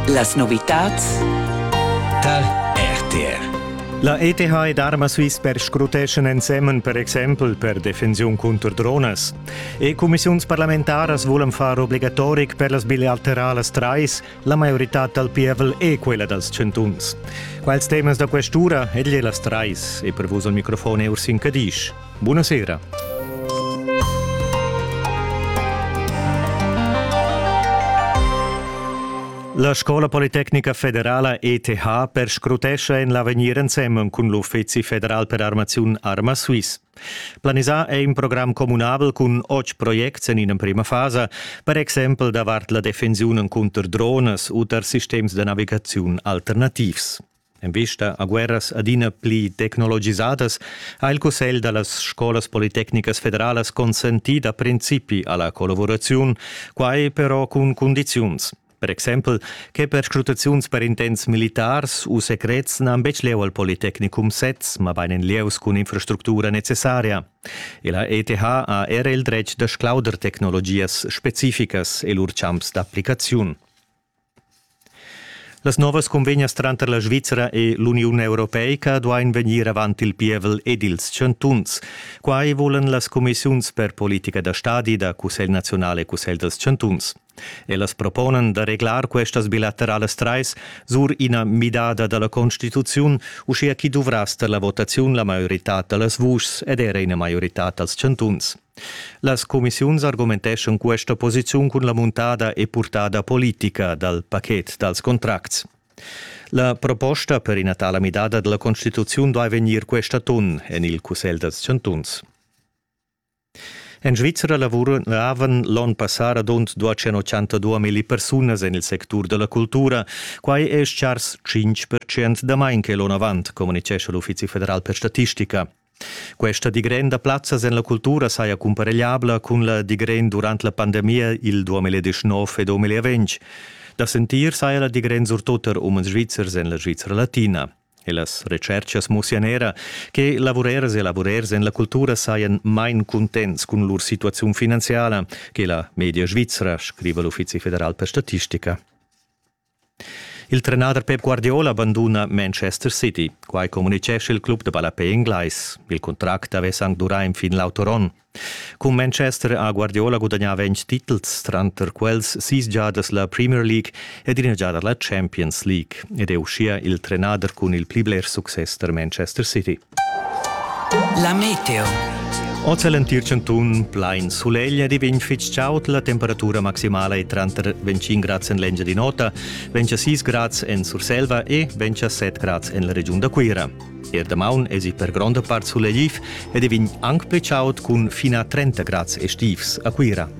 Las novitads tar RTR. La ETH ed Arma Swissper scruteschan ensemen per exempel per defensiun cunter dronas. E cumissiunsparlamentaras volan far obligatoric per las bilateralas trais la maioritad dal pievel e quella dals chantuns. Quals temas da questura egli las trais e per vus al microfon Ursin Cadisch. Buna sera. La Scola Politecnica Federala ETH perscrutescha en l'avegnir ensemen cun l'Uffizi federal per armaziun Arma Swiss. Planisà è in program communabel cun otg projects en in'emprima fasa, per exempel davart la defensiun cunter drones u tar sistems da navigaziun alternativs. En vista a guerras adina pli tecnologisadas ha il Cussegl da las scolas politecnicas federalas consentì da principi a la collavuraziun, quai però cun cundiziuns. Per exempel che perscrutaziuns per intents militars u secrets n'han betg lieu al Politecnicum sez, mabain en lieus cun infrastructura necessaria. E la ETH ha era il dretg da sclauder tecnologias specificas e lur champs d'applicaziun. Las novas cunvegnas tranter la Svizra e l'Uniun europeica duain vegnir avant il pievel ed ils chantuns. Quai vulan las cumissiuns per politica da stadi da Cussegl naziunal e Cussegl dals chantuns. Ellas proponan da reglar questas bilateralas trais sur ina midada da la constituziun, uschia ch'i duvrass tar la votaziun la maioritad da las vuschs ed era ina maioritad dals chantuns. Las cumissiuns argumenteschan questa posiziun cun la muntada e purtada politica dal paket dals contracts. La proposta per ina tala midada della Constituzione doveva vegnir questa ton en il Cussegl dels Chantuns. En Svizzera lavoravan l'onn passà radund 282 mila persunas en il sectur della cultura. Quai è chars 5% damain che l'onn avant, communicescha l'Uffizi federal per statistica. Questa digrenda plazzas en la cultura saja cumparegliabla cun la digrend durant la pandemia il 2019 e 2020. Da sentir saja la digrend surtut er umens svizzers en la Svizra latina. E las retscherchas mussian era che lavurers e lavurers en la cultura sajan main cuntents cun lur situaziun finanziala che la media svizra, scriva l'Uffizi federal per statistica. Il trenader Pep Guardiola banduna Manchester City. Quai communitgescha il club da ballapè englais. Il contract avess anc durà enfin l'auturon. Cun Manchester ha Guardiola gudagnà ventg titels, tranter quels sis giadas la Premier League ed ina giada la Champions League ed è uschia il trenader cun il pli bler success da Manchester City. La meteo. Oz è l'entir chantun plain sulegl ed i vegn fitg chaud. La temperatura maximala è tranter 25 grads en l'Engia di Nota, 26 grads en Surselva e 27 grads en la regiun da Cuira. Er damaun èsi per gronda part sulegliv ed i vegn anc pli chaud cun fin a 30 grads estivs a Cuira.